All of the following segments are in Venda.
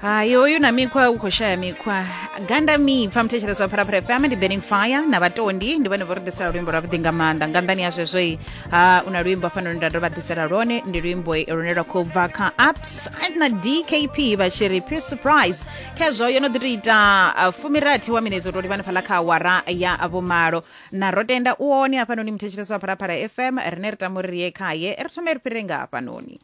hayi hoyu na mikhwa u khou shaya mikhwa ganda mipfa muthetshelezi wa pharapara fm ndi burning fire na vhatondi ndi vhone vho ri ḓisela luimbo lwavhuḓi nga maanḓa nga nḓani ya zwezwoi ha u na luimbo hafhanoni nda ndo vha ḓisela lwone ndi luimbo lune lwa khou bva kha ups and na dkp vha tshi ri pure surprise khezwo yo no ḓi to ita uh, fumirathi wa minetse u to livhana fhaḽa kha awara ya vhumalo na ro tenda u one hafhanoni muthetshelezi wa pharapara fm rine ri tama uri ri ye khaye ri thome ri fhirire nga hafhanoni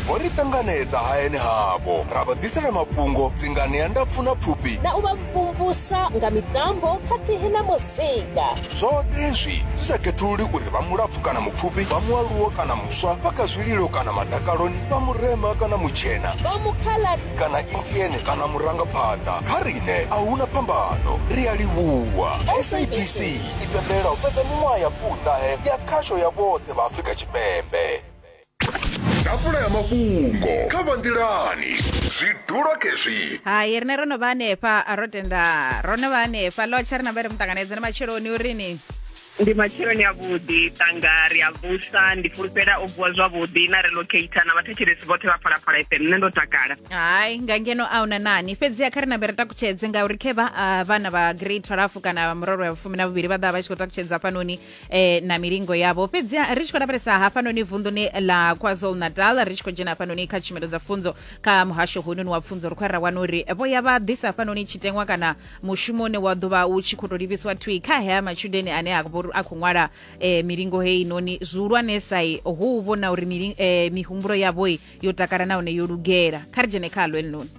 vho ri ṱanganedza hayani havho ra vha ḓisela mafhungo dzingani ya ndapfu na pfufhi na u vha mvumvusa nga mitambo khathihi na muzika zwoṱhe izwi zwi sa khethululi uri vha mulapfu kana mupfufhi vha mualuwo kana muswa vha kha zwililo kana madakaloni vha murema kana mutshena vha mukhaladi kana indiene kana murangaphanḓa kha rine a huna phambano ri a livhuwa sabc i pembela u fhedza miṅwaha ya pfuṱahe ya khasho ya vhoṱhe vha afrika tshipembe ḓafula ya mafhungo kha vha nḓilani zwi dula khezwi hai rine ro no vha hanefha ro tenda ro no vha hanefha lotsha ri na vha ri muṱanganedze na matsheloni uri ni ndi matsheloni a vhuḓi tanga ri a vusa ndi fulufhela o vuwa zwavhuḓi na relocata na vhathetshelesi vhoṱhe vha phalaphala fm nṋe ndo takala hai nga ngeno a una nani fhedziha kha ri nambe ri takutshedze ngauri khe vha ah, vhana vha grade 12 kana muroro ya vhufumi na vhuvhili vha ḓa vha tshi khou takutshedza hafhanoni eh, na milingo yavho fhedzi ri tshi khou lavhelesa hafhanoni vunḓuni ḽa kwazulu natal ri tshi khou dzhena hafhanoni kha tshumelo dza pfunzo kha muhasho hounoni wa pfunzo ri khou ya ra wana uri vho ya vha ḓisa hafhanoni tshiteṅwa kana mushumo une wa ḓo vha u tshi khou tou livhiswa thwi kha hea matshudeni ane a vho- a khou ṅwala eh, milingo heinoni zwihulwanesai hu u vhona uri mili- eh, mihumbulo yavhoi yo takala nahone yo lugela kha ri dzhene kha ḽo elinoni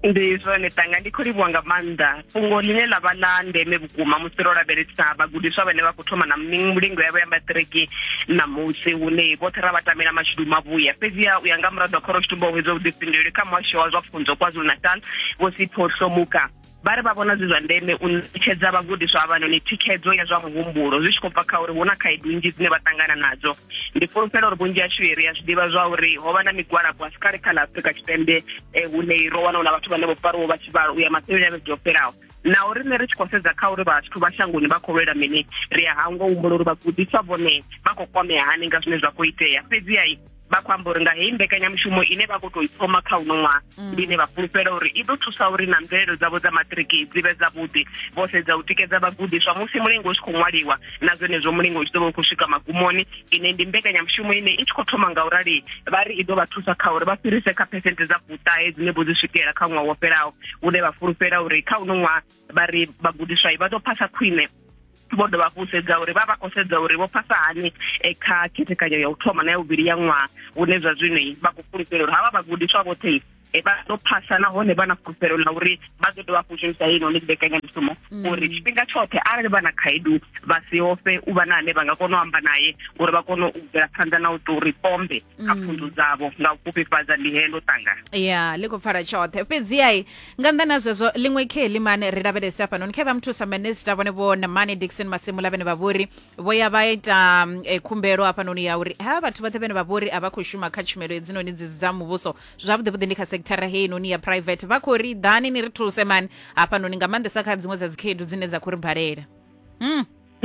ndi zwone tanga ndi khou livhuwa nga maanḓa fhungo ḽine ḽa vha ḽa ndeme vhukuma musi ro lavhelesa vhagudiswa vhane vha khou thoma na mulingo yavho ya maṱiriki ṋamusi hune vhoṱhe ra vha tamela mashudu mavhuya fhedziha u ya nga muraḓo wa khoro tshitumbo hwedza vhuḓifhinduleli kha muhasho wa zwa pfunzo kwazulu natal vho sipho hlomuka vha ri vha vhona zwi zwa ndeme u ṋetshedza vhagudiswa avhanoni thikhedzo ya zwa muhumbulo zwi tshi khou bva kha uri hu na khaedu nnzhi dzine vha ṱangana nadzo ndi fulufhela uri vhunzhi hashu ri a zwi ḓivha zwa uri ho vha na migwalabo a si kale kha ḽa afurika tshipembe eh, hune ro wana hu na vhathu vhane vho fariwo vha tshivhalo u ya masheleni a vhege yo fhelaho na uri nṋe ri tshi khou sedza kha uri vhathu vha shangoni vha khou lwela mini ri a hangwa humbula uri vhagudiswa vhone vha khou kwamea hani nga zwine zwa khou itea fhedziha vha khou amba uri nga heyi mbekanyamushumo ine vha khou tou i thoma kha uno ṅwaha mm. ndi ine vha fulufhela uri i ḓo thusa uri na mvelelo dzavho dza matiriki dzi vhe dzavhuḓi vho sedza u tikedza vhagudiswa musi mulingo u tshi khou ṅwaliwa na zwenezwo mulingo u tshi ḓo vha u khou swika magumoni ine ndi mbekanyamushumo ine i tshi khou thoma nga u rali vha ri i ḓo vha thusa kha uri vha fhirise kha phesente dza fuṱahe dzine vho dzi swikela kha ṅwaha wo fhelaho une vha fulufhela uri kha uno ṅwaha vha ri vhagudiswa vha ḓo phasa khwine vho dovha hafhu sedza uri vha vha khou sedza uri vho phasa hani eh, kha khethekanyo ya u thoma na ya vhuvhili ya ṅwaha vhune zwa zwino vha khou fulufhela uri havha vhagudiswa vhoṱhe e vha ḓo phasa nahone vha na fulufhelo ḽa uri vha ḓo dovha hafhu shumisa heyi noni mbekanyamushumo mm. uri tshifhinga tshoṱhe arali vha na khaedu vha si ofhe u vha na ane vha nga kona u amba naye uri vha kone u bvela phanḓa na u tou ri pombe kha mm. pfunzo dzavho nga u fhufhifhadza ndi helo tanga ya ḽi khou pfala tshoṱhe fhedziai nga nnḓa na zwezwo ḽiṅwe khe limane ri lavhelese hafhanoni khe vha muthusa minista vhone vho namane dixon masimula vhene vha vhori vho ya vha ita mm, eh, khumbelo hafhanoni ya uri ha vhathu vhoṱhe vhene vha vhori a vha khou shuma kha tshumelo hedzinoni dzi dza muvhuso zwavhuḓivhuḓi ndi kha sekithara heinoni ya private vha khou ri ḓani ni ri thuse mani hafhanoni nga maanḓesa kha dziṅwe dza dzikhaedu dzine dza khou ri balela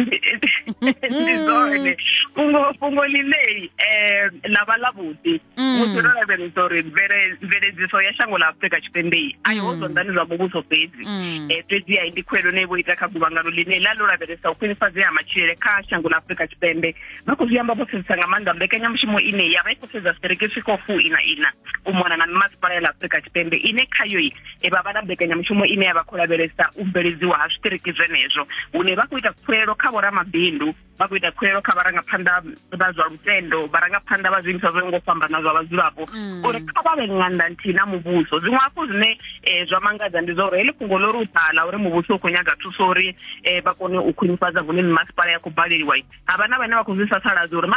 ndi zwone fhungo fhungo ḽineyi um ḽa vha ḽa vhuḓi Mm. musi ro lavhelesa uri mvele- mveledziso ya shango ḽa afurika tshipembeyi a iho Mm. zwanḓani zwa muvhuso fhedzi Mm. Eh, fhedzi ai ndi khuwelo ne vho ita kha guvhangano ḽine ḽa ḽo lavhelesa u khwinifhadzea ha matshilele kha shango ḽa afurika tshipembe vha khou zwi amba vho sedzesa nga maanḓa mbekanyamushumo ine ya vha i khou sedza zwiṱereke zwi khou fu ina ina u mona na mimasipala ya ḽa afurika tshipembe ine khayo i e vha vha na mbekanyamushumo ine ya vha khou lavhelesa u bveledziwa ha zwiṱiriki zwenezwo hune vha khou ita khuelo kha vhoramabindu vha khou ita khuelo kha vharangaphanḓa vha zwa lutendo vharangaphanḓa vha zwiimiswa zwo ngo fhambana zwa vhadzulapo mm. uri kha vha vhe ṅanda nthihi na muvhuso zwiṅwe hafhu zwine um zwa mangadza ndi zwa uri heḽi fhungo ḽo ri u ḓala uri muvhuso u khou nyaga thuso uri um vha kone u khwinifhadza hune mimasipala ya khou baleliwa ha vha na vhane vha khou zwi sasaladza uri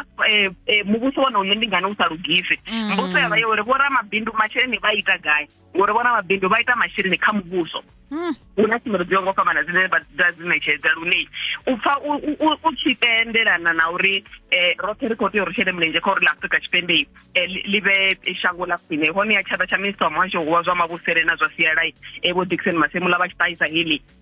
eh, muvhuso wone une ndi ngani u sa lugisi mm. mbuso ya vha yo uri vhoramabindu masheleni vha ita gai ngori vhona mabindu vha ita masheleni kha muvhuso hmm. hu na tshumelo dzo ngo fhambana dzine vha dzi ṋetshedza lune u pfa u tshi tendelana na uri eh, roṱhe ri khou tea uri shele mulenzhe kha uri la afrika tshipembe eh, ḽi vhe shango ḽa khwine hone ya tshaḓa tsha minista wa muhasho wa zwa mavhusele na zwa sialai eh, vho dixon masemula vha tshi ṱahisa heḽi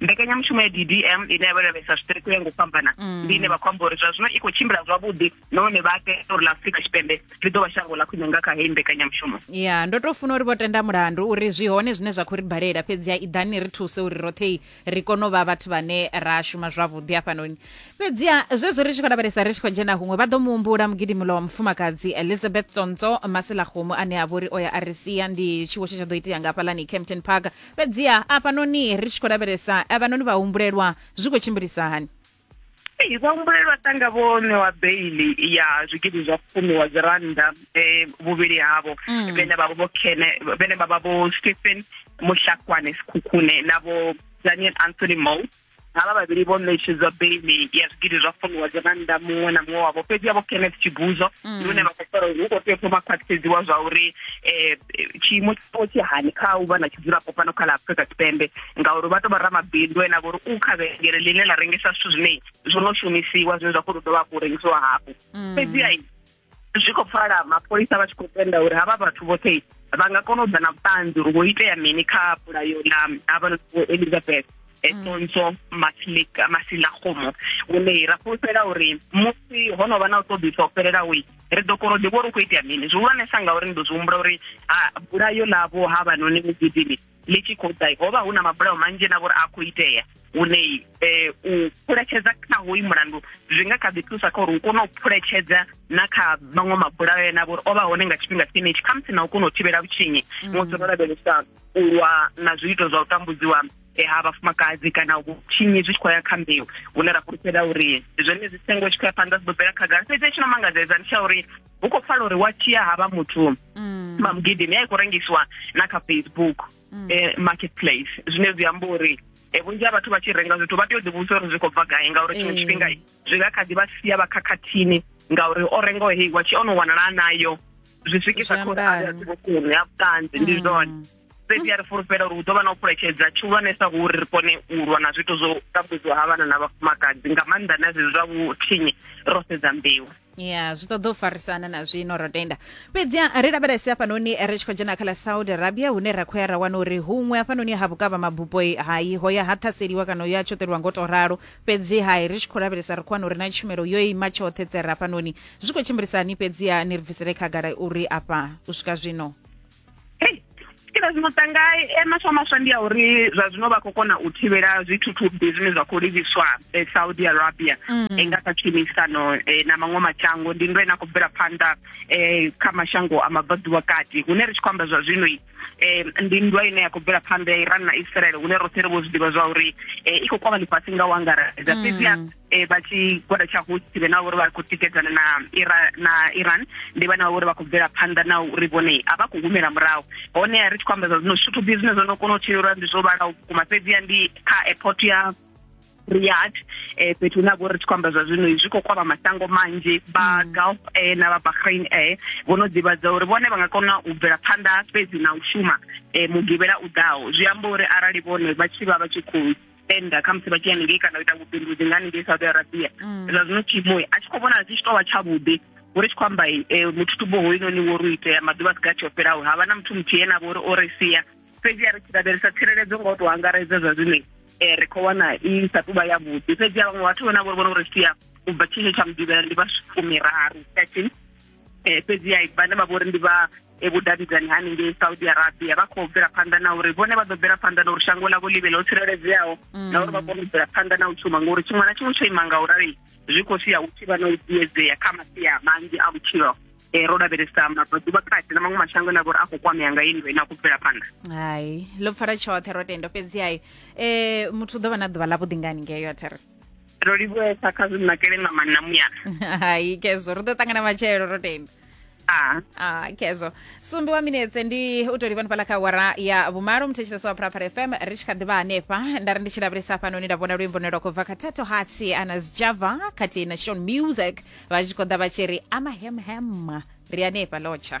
mbekanyamushumo ya ddm ine ya vha lavhelesa zwiṱereke u ya nga u fhambana mm. ndi ine vha khou amba uri zwa zwino i khou tshimbila zwavhuḓi nahone vha tea uri ḽa afurika tshipembe ḽi ḓo vha shango ḽa khwine nga kha heyi mbekanyamushumo ya ndo tou funa uri vho tenda mulandu uri zwi hone zwine zwa khou ri balela fhedzi ya iḓani ri thuse uri roṱhe ri kone u vha vhathu vhane ra shuma zwavhuḓi hafhanoni fhedzi ya zwezwo ri tshi khou lavhelesa ri tshi khou dzhena huṅwe vha ḓo mu humbula mugidimulo wa mufumakadzi elizabeth tsontswo masilakgomo ane a vha uri o ya a ri sia ndi tshiwo tshe tsha ḓo itea nga hafhaḽani campton park fhedziha afhanoni ri tshi khou lavhelesa avhanoni vhahumbulelwa zwi khou tshimbilisa hani Ee, vhahumbulelwa tanga vho ṋewa beili ya zwigidi zwa fumi wa dzi rannda um vhuvhili havho Mm. vhene vhavha vho kene vhene vhavha vho stephen muhlakwane sikhukhune na vho daniel anthony mo havha vhavhili vho ṋetshedzwa beili ya zwigidi zwa funiwa dza rannda muṅwe na muṅwe wavho fhedzi yavho kenneth tshibuzo mm. ndi hune vha khou fara uri hu khou tea thoma khwaṱhisedziwa zwa uri um tshiimo tshawo tshi hani kha u vha na tshidzulapo fhano kha ḽa afrika tshipembe ngauri vha tou vha ramabindu ena vho uri u kha vhengele ḽine ḽa rengisa zwithu zwine zwo no shumisiwa zwine zwa khou tou dovha hafhu u rengisiwa hafhu mm. fhedziha zwi khou pfala mapholisa vha tshi khou tenda uri havha vhathu vhoṱhe vha nga kona u ḓa na vhuṱanzi uri vho itea mini kha pulayo ḽa havha elizabeth sonso masilika masilagomo one ra fhulufhela uri musi ho no vha na u ṱoḓisa u fhelelaho ri ḓo kona u ḓivha uri u khou itea mini zwihulwanesa ngauri ndi ḓo zwi humbula uri bulayo ḽavho ha vhanoni mugidimi ḽi tshi khou ḓa ho vha hu na mabulayo manzhi na vhori a khou itea hune eh, u phuletshedza kha hoyu mulandu zwi nga kha ḓi thusa kha uri u kone u phuletshedza na kha maṅwe mabulayo ena vhori o vha hone nga tshifhinga tshenetshi khamusi na u kona u thivhela vhutshinyi mm. musi ro lavhelesa u lwa na zwiito zwa u tambudziwa eh, ha vhafumakadzi kana vhutshinyi zwi tshi khou ya kha mbeu hune ra fhulufhela uri zwenezwi sengo tshi khou ya phanḓa zwi ḓo bvela khagala fhedzi tshi no mangadzedza ndi tsha uri hu khou pfala uri wa tia havha muthu mm. mamugidimi a i khou rengisiwa na kha facebook mm. eh, marketplace zwine zwi amba uri e vhunzhi ha vhathu vha tshi renga zwithu vha tea u ḓivhusa uri zwi khou bva gai ngauri tshiṅwe eh. tshifhinga zwi nga kha ḓi vha sia vha khakhathini ngauri o rengaho hei wa tshi o no wanala nayo zwi swikisa khou a vhuṱanzi ndi mm. zwone fhedzi a ri fulufhela uri hu ḓo vha na u phuletshedza tshihulwanesa hu uri ri kone u lwa na zwiito zwo tambudziwa ha vhana na vhafumakadzi nga maanḓa na zwezwi zwa vhuthinyi ro sedza mbeu ya zwi ṱoḓa u farisana na zwino ro tenda fhedzi ri lavhelese hafhanoni ri tshi khou dzhena kha ḽa saudi arabia hune ra khou ya ra wana uri huṅwe hafhanoni ha vhukavha mabupo hai ho ya ha ṱhaseliwa kana ya tshoṱeliwa ngo to ralo fhedzi hai ri tshi khou lavhelesa ri khou wana uri na tshumelo yo ima tshoṱhe tsere hafhanoni zwi khou tshimbilisani fhedzi ni ri bvisele khagala uri afha u swika zwino kila zwino tanga e maswa maswa ndi ya uri zwa zwino vha khou kona u thivhela zwithuthubbi zwine zwa khou livhiswa e saudi arabia mm. e nga kha tshumisano e, na maṅwe mashango ndi ndo ine a khou bvela phanḓa e, kha mashango a mabvaḓuvha kati hune ri tshi khou amba zwa zwino e, ndi nndwa ine ya khou bvela phanḓa ya iran na israel hune roṱhe ri vho zwi ḓivha zwa uri e, i khou kwama ḽifhasi nga u angaredza mm. fhedziha eh, vha tshigwada tsha Houthi vhe na uri vha khou tikedzana na Iran na Iran ndi vhana uri vha khou bvela phanḓa na uri vhone a vha khou humela murahu hone ri tshi khou ambedza zwino zwithu bzi zwine zwo no kona u tshilelwa ndi zwo vhalaho vhukuma fhedzi ya ndi kha airport ya Riyadh eh fhethu hune vho ri tshi kwamba zwa zwino zwi khou kwama masango manzhi ba mm. Gulf eh na ba Bahrain eh vho no ḓivhadza uri vhone vha nga kona u bvela phanḓa fhedzi na u shuma eh mugivhela u ḓaho zwi amba uri arali vhone vha tshi vha vha tshi khou tenda khamusi vha tshi ya haningei kana u ita vhubindudzi nga haningei saudi arabia mm. zwa zwino tshiimo a tshi khou vhona zwi tshi tou vha tshavhuḓi uri tshi khou amba eh, muthutubo hoyunoni wo ri itea maḓuvha si gathi o fhelaho ha vha na muthu muthihi ene a vho uri o ri sia fhedzi a ri tshi lavhelesa tsireledzo nga u tou angaredza zwa zwino um eh, ri khou wana i sa tuvha yavhuḓi fhedzi a vhaṅwe vhathu vhona vho ri vhona vho ri sia u bva tshetsho tsha mudivhela ndi vha fumiraru thirteen eh, fhedzi ya vhane vha vhori ndi vha eh, vhudavhidzani haningei saudi arabia vha khou bvela phanḓa na uri vhone vha ḓo bvela phanḓa na uri shango ḽavho ḽi vhe ḽo tsireledzeaho mm. na uri vha kone u bvela phanḓa na u shuma ngori tshiṅwe na tshiṅwe tsho ima nga u rali zwi khou sia u tshi vha na u ḓiedzea kha masia manzhi a vhutshilo um ro lavhelesa maḓuvha kati na maṅwe mashango ane a vhori a khou kwamea nga inwe ine a khou bvela phanḓa hai ḽo pfala tshoṱhe ro tenda fhedzi hai um muthu u ḓo vha na ḓuvha ḽa vhuḓingani ngeyo a thiri ro livhuesa kha zwi nakele nga manna muya hai kezo ri ḓo ṱangana matshelo ro tenda ah. ah kezo sumbi wa minetse ndi u to livha fhala kha wara ya vhumalo muthetshelesi wa phuraphara fm ri tshi kha ḓivha hanefha nda ri ndi tshi lavhelesa fhanoni nda vhona luimbo ne lwa khou bva kha tato hatsi ana sjava khathihi na shon music vha tshi khou ḓa vha tshi ri amahemhema ri hanefha lotsha